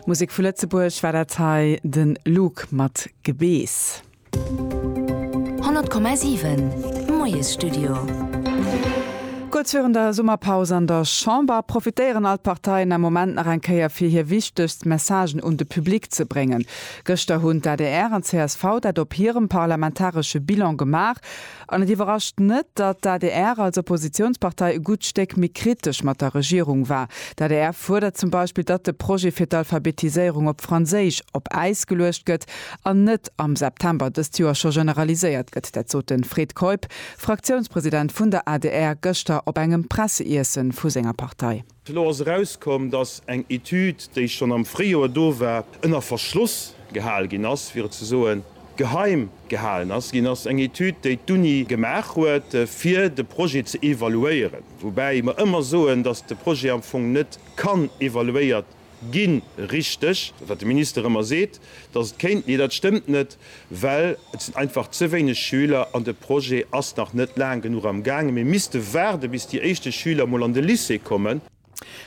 Musek vu Lëtzebuerg war dat hei, de Luuk mat Gebeess. 100,7 Moiesstudio. Kuerz virun der Summerpaus an der Chamber profitéieren all d'Parteien am Moment nach eng Kéier fir hir wichtegst Messagen un de Public ze bréngen. Gëschter hunn d'ADR an csv dat op hirem parlamentaresche Bilan gemaach. An et iwwerrascht net, datt d'ADR als Oppositiounspartei e gutt Stéck méi kritesch mat der Regierung war. D'ADR fuerdert zum Beispill, datt de Projet fir d'Alphabetiséierung op Franséisch op Äis geluecht gëtt an net am September dëst Joer scho generaliséiert gëtt. Dat sot de Fred Keup, Fraktiounspresident vun der adr, gëschter op engem Presseiessen vu senger Partei. Elo ass erauskomm, datt eng Etüd, déi schonn am Fréijoer do war, ënner Verschloss gehal ginn ass, fir et ze soen, geheim gehalen ass ginn ass. Eng Etüd, déi d'Uni gemaach huet, fir de Projet ze evaluéieren. Woubäi mer ëmmer soen, datt de Projet am Fong net kann evaluéiert Ginn. Richteg, wat de Minister ëmmer seet, datt et kéint, mee dat stëmmt net, well et sinn einfach ze wéineg Schüler an de Projet ass nach net laang genuch am gaangen. Mir misste waarde bis déi éischte Schüler mol an de Lycée kommen.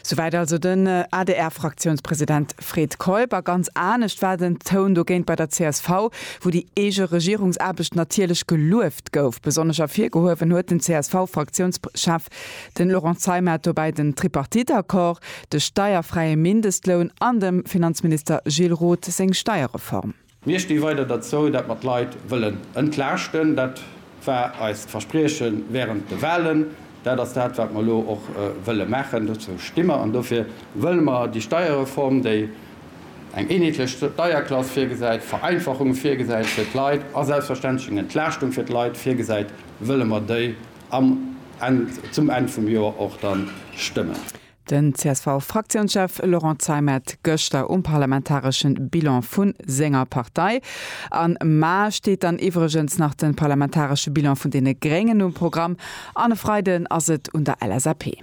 Souwäit also den ADR-Fraktiounspresident Fred Keup. A ganz anescht war den Toun dogéint bei der csv, wou déi eege Regierungsaarbecht natierlech gelueft gouf. Besonnesch ervirgehuewen huet den CSV-Fraktiounschef Den Laurent Zeimer hat dobäi den Tripartite-Accord, de steierfräie Mindestloun an dem Finanzminister Gilles Roth seng Steierreform. Mir sti weider derzou, dat mer d'Leit wëllen entlaaschten. Dat war eist Versprieche während de Wahlen. Dat ass dat, wat mer elo och wëlle maachen. Dozou sti mer an dofir wëlle mer déi Steierreform, déi eng eenheetlech Steierklass virgesäit, Vereinfachunge virgesäit fir d'Leit a selbstverständlech eng Entlaaschtung fir d'Leit virgesäit, wëlle mer déi am Enn, zum Enn vum Joer och dann stëmmen. Den CSV-Fraktiounschef Laurent Zeimet gëschter um parlamentaresche Bilan vu senger Partei. Am Mar steet dann iwwregens nach de parlamentaresche Bilan vun deene Gréngen um Programm an e Freiden ass et un der LSAP.